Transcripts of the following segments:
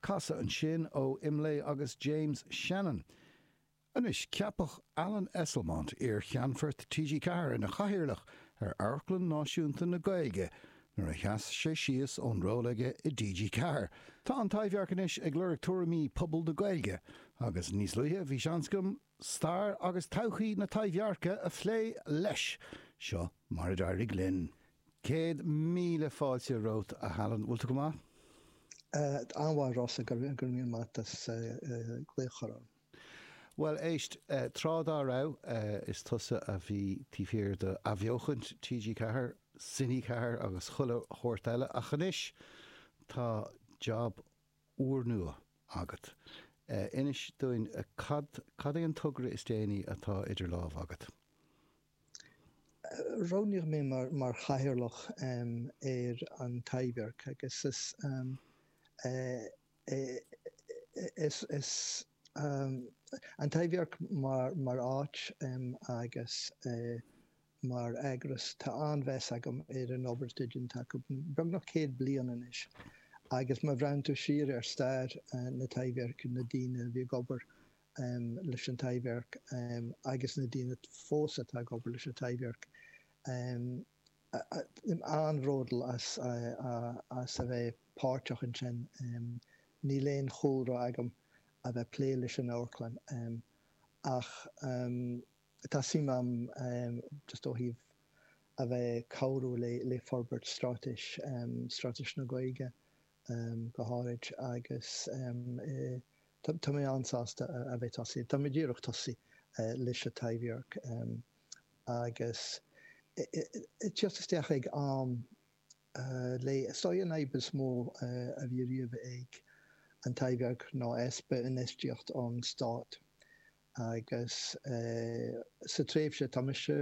Casadh ansin ó Imlé agus James Shannon. Anois ceapadh Alan Esslemont, iar-Cheannfort TG4, ina Chathaoirleach ar Amharclann Náisiúnta na Gaeilge nuair a sheas sé síos ón ról aige i dTG4. Tá An Taibhdhearc anois ag lorg tuairimí pobal na Gaeilge agus níos luaithe bhí seans agam stair agus todhchaí na Taibhdheirce a phlé leis. Seo mar a d'éirigh linn. Céad míle fáilte romhat, a Alan. Bhfuil tú go maith? An-mhaith, a Rossa, go raibh míle maith as glaoch orm. Bhuel, éist, tráth dá raibh, is tusa a bhí taobh thiar d'athbheochaint TG4, Cine 4 agus chuile shórt eile, ach anois tá jab úrnua agat. Inis dúinn cad, cad é an togra is déanaí atá idir lámha agat? Roghnaíodh mé mar, mar chathaoirleach ar an Taibhdhearc agus is é, is, is an Taibhdhearc mar, mar áit agus. mar eagras. Tá an-mheas agam ar an obair atá déanta acu beagnach céad bliain anois agus má bhreathnaíonn tú siar ar stair na Taibhdheirce, na daoine a bhí ag obair leis an Taibhdhearc agus na daoine fós atá ag obair leis an Taibhdhearc, táim an-bhródúil as a bheith páirteach ansin. Níl aon chúlra agam a bheith ag plé leis an amharclann ach. Tá suim agam just ó thaobh a bheith ag cabhrú le forbairt stráitéis, stráitéis na Gaeilge go háirid agus tá mé an-sásta a bheith tosaithe, tá mé díreach tosaithe leis an Taibhdhearc agus ag tíocht isteach ag am le. Is í an fhadhb is mó a bhí riamh ag an Taibhdhearc ná easpa infheistíocht ón stát agus sa tréimhse atá mise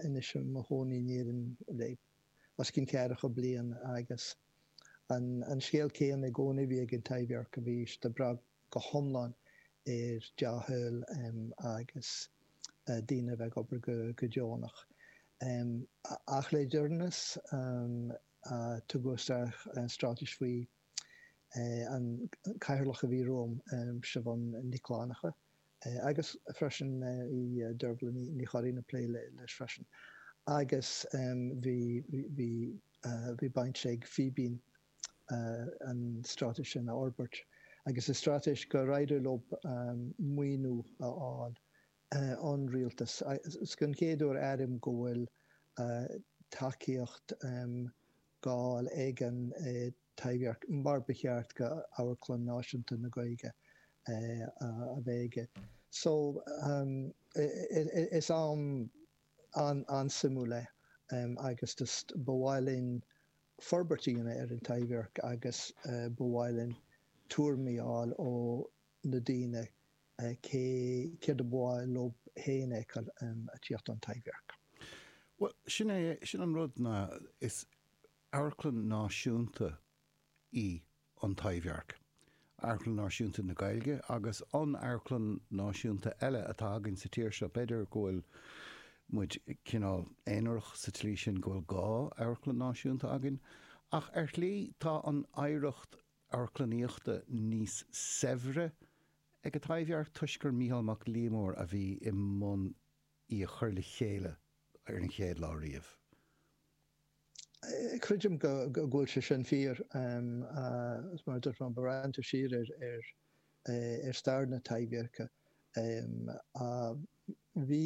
anois i mo chónaí in Éirinn le os cionn ceathracha bliain agus an scéal céanna i gcónaí a bhí ag an Taibhdhearc a bhí siad ag brath go hiomlán ar dea-thoil agus daoine a bheith ag obair go deonach. Ach le deireanas tugadh isteach stráitéis faoi an cathaoirleach a bhí romham, Siobhán Nic Fhlannchadha, agus freisin bhí Deirbhile Ní Churraighín ag plé leis freisin. Agus bhí, bhí, bhí baint ag Fíbín an stráitéis sin a fhorbairt agus is stráitéis gur éirigh leo maoiniú a fháil ón rialtas. Is den chéad uair, airím, go bhfuil tacaíocht. gcáil éigin Taibhdhearc mar ba cheart go Amharclann Náisiúnta na Gaeilge a bheith aige. So is am an-suimiúil é agus just ba mhaith linn forbairt a dhéanamh ar an Taibhdhearc agus ba mhaith linn tuairimí a fháil ó na daoine céard ab áil leo féin a fheiceáil ag tíocht don Taibhdhearc. Bhuel, sin é, sin an rud ná is amharclann náisiúnta í an Taibhdhearc, amharclann náisiúnta na Gaeilge agus an amharclann náisiúnta eile atá againn sa tír seo. B'fhéidir go bhfuil muid cineál aonarach sa tslí sin go bhfuil dhá amharclann náisiúnta againn ach ar shlí tá an oidhreacht amharclannaíochta níos saibhre ag an Taibhdhearc toisc gur Micheál Mac Liammóir a bhí i mbun í a chur le chéile ar an chéad lá riamh. Creidim go bhfuil sé sin fíor, agus mar a dúirt mé, má bhreathnaítear siar ar stair na Taibhdheirce, bhí.